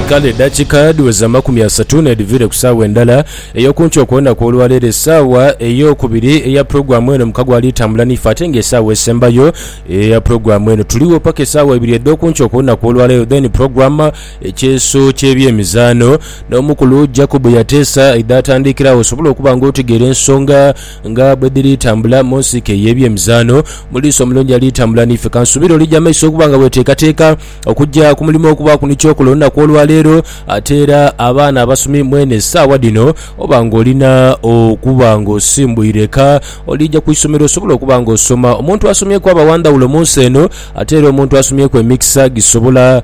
Kale edakika dhiweza amakumi asatu n'edhiviire ku saawa endala ey'okunkyo okw'olunaku olwaleero. Esaawa ey'okubiri eya pulogulaamu eno mukago ali tambula n'ife ate nga esaawa esembayo eya pulogulaamu eno tuligho paka esaawa ibiri edh'okunkyo okw'olunaku olwaleero then pulogulaamu ekyeeso ky'ebyemizaano n'omukulu Jacob Yateesa aidha atandiikiragho osobole okuba nga otegeera ensonga Nga bwe dhiri tambula mu nsiike ey'ebyemizaano, mu liiso omulungi ali tambula n'ife. Ka nsuubire olija amaiso okuba nga weeteekateeka okugya ku mulimo ogubaaku ni kyokola olunaku olwa leero. Ate era abaana abasomi mwene essaawa dhino oba ng'olina okuba ng'osimbwire ka, oliija ku isomero osobole okuba ng'osoma. Omuntu asomyeku aba wa ndhawulo mu nsi eno, ate era omuntu asomyeku emikisa gisobola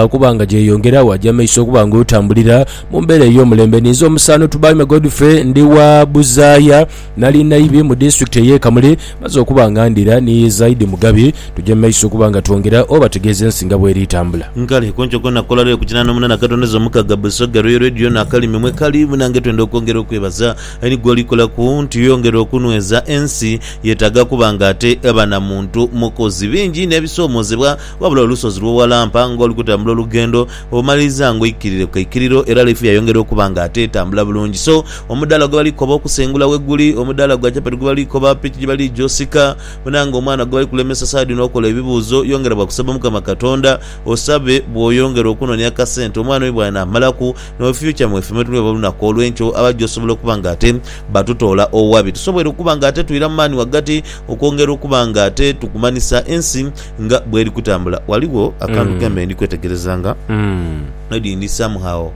okuba nga gyeyongera. Waja amaiso okuba ng'otambulira. Mu mbeera ey'omulembe ninze omusaano Tubaime Godfrey ndi wa Buzaaya. Nali naibi mu disitulikiti ey'e Kamuli. Maze okuba nga ndhira ni Zaidi Mugabi, tugye mu maiso okuba nga twongera obategeeza ensi nga bw'eri etambula. Kale ku nkyo kona kula lwe ku kinaana omunana katondeza omukaga Busoga Royal Radio n'akalimi mwe kali munange twenda okwongera okwebaza eri gwoli kolaku nti oyongera okunweza ensi yetaaga kuba nga ate eba na muntu mukozi bingi n'ebisomozebwa wabula olusozi lwowalampa ngoli kutambula olugendo Obumaliriza nga oikirire ku kaikiriro era life yayongera okuba nga ate etambula bulungi. So, omudaala gwe bali koba okusengula weguli, omudaala gwa chapati gwe bali koba, piki gye bali gya osika, bwonanga omwana gwe bali kulemesa saadi n'okola ebibuuzo, yongera bwa kusaba Omukama Katonda, osabe bw'oyongera okunonia akasente omwana oyo bw'anamalaku, n'owe future mw'efe mwetuli oba olunaku olw'enkyo aba aja osobola okuba nga ate batutoola owabi. Tusobweire okuba nga ate twira mu maani wagati okwongera okuba nga ate tukumanhisa ensi nga bweri kutambula ghaligho akantu mm. kembe ndi kwetegereza nga mm. maybe ndi somehow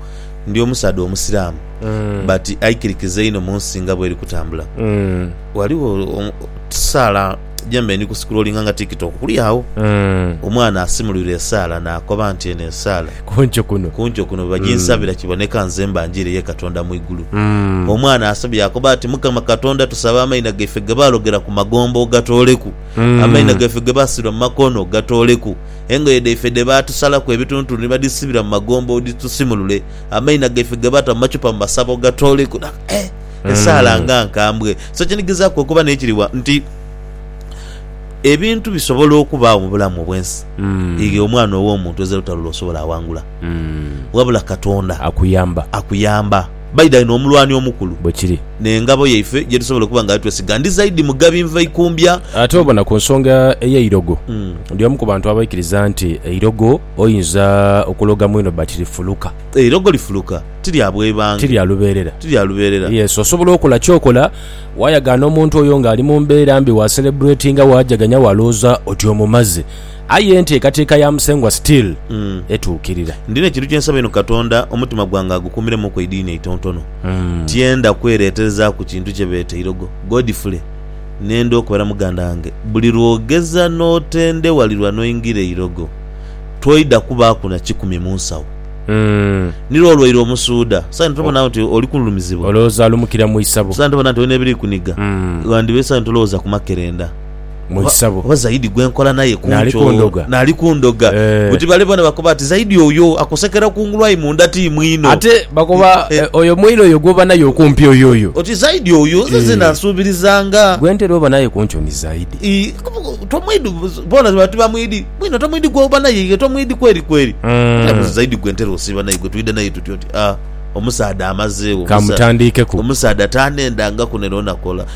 ndi omusaadha omusiraamu mm. but aikirikiza inho munsi nga bweri kutambula mm. ghaligho um, saala jembe ndi kusikulolinga nga tiktok kuli agho mm. omwana asimulwire esaala nakoba nti eno esaala kunco kuno kunco kuno bajinsabira mm. kiboneka nze mba njire ye katonda mu igulu mm. omwana asabye akoba ati mukama katonda tusaba amaina gaife gebalogera ku magombo ogatoleku Amaina gaife ge baasiba mu makono gatooleku. Engoye dhaife dhe baatusalaku ebituntulu ni badhisibira mu magombe odhitusimulule. Amaina gaife ge baata mu macupa mu masabo gatooleku. Na, eh, esaala nga nkambwe! So kinigizaaku okuba n'ekiriwa nti ebintu bisobola okubaagho mu bulamu obw'ensi aye omwana ow'omuntu ezira lutalo lw'osobola awangula. Wabula Katonda. Akuyamba. Akuyamba. Baidha inho omulwani omukulu. Bwe kiri. N'engabo yaife gye tusobola okuba nga twesiga ndi zaidi Mugabi Nvaikumbya. Ate obona ku nsonga ey'eirogo, ndi omu ku bantu abaikiriza nti eirogo oinza okuloga mwino but lifuluka. Eirogo lifuluka, ti lya bwebange. Ti lya lubeerera. Ti lya lubeerera. Yes, osobola okola ky'okola, waayagaana omuntu oyo ng'ali mu mbeera mbi, waaseleburetinga, waajaganya, waalowooza oti omumaze. Aye enteekateeka ya Musengwa still etuukirira. Ndina ekintu kye nsaba inho Katonda omutima gwange agukumiremuku eidiini eitontono. Tiyenda kwereterezaaku kintu kye beeta eirogo. Godfrey, Nenda okubera muganda wange. Buli lw'ogeza n'otendewalirwa n'oingira eirogo, toidha kubaaku na kikumi mu nsawo. Ni lwo olwaire omusuudha. Saino tobona nti oli kululumizibwa? Olowooza alumukira mu isabo? Saino tobona nti olina ebiri kuniga? Ghandiba esanyu tolowooza ku makerenda. mu Oba, isabo. oba Zaidi gwe nkola naye ku Naali nkyo kundoga. naali kundoga. Eh. Buti bale boona bakoba ati, Zaidi oyo akusekera kungulu aye munda ti mwino. Ate bakoba Eh. eh, oyo mwine oyo gw'oba naye okumpi oyo oyo. Oti Zaidi oyo nze nze Eh. nansuubirizanga. Gwe ntera oba naye ku nkyo ni Zaidi. I- tomwidi boona bati bamwidi mwino tomwidi gwoba naye ye tomwidi kweri kweri Mm. Era buzi zaidi gwe ntera osiiba naye gwe twidha naye tutyo nti ah omusaadha amazeewo Ka omusa- mutandiikeku. omusaadha tanendangaku nera onakola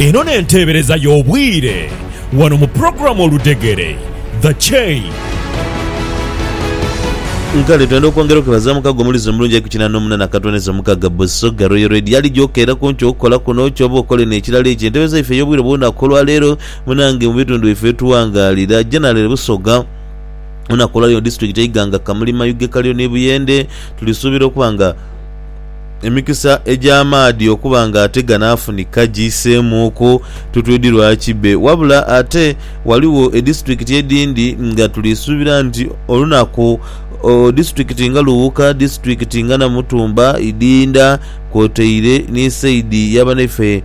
Eno n'enteebereza y'obwire wano mu pulogulaamu Oludhegere, The Chain. Kale twendha okwongera okwebaza mukago omulizi omulungi ali ku kinana omunana Katwaniza Omukaga Busoga Royal Radio ali gyokeera ku nkyo okukola kuno kyoba okola eno ekirala ekyo entebe zaife ey'obwire obw'olunaku olwaleero munange mu bitundu byaifwe byetuwangaalira General Busoga Olunaku olwaleero mu disitulikiti Iganga, Kamuli, Mayuge, Kaliro ni Buyende tulisuubira okuba nga emikisa egy'amaadhi okuba nga ate ganaafunika giiseemuuku tutwidi lwa kibbe wabula ate ghaligho edisitulikiti edhindi nga tulisuubira nti olunaku disitulikiti nga Luwuka, disitulikiti nga Namutumba, Idinda kwotaire ni sayidi ya banaife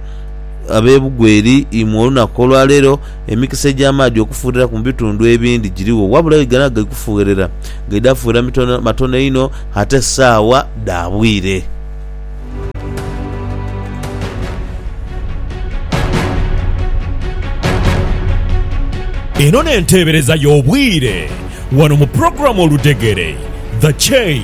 ab'e Bugweri imwe olunaku olwaleero. Emikisa egy'amaadhi okufuugheraku mu bitundhu ebindi girigho, wabula aye gano agali kufuuherera gaidha fuuhera mitono matono inho ate saagha dha bwire. Eno n'enteebereza y'obwire wano mu pulogulaamu Oludhegere, The Chain.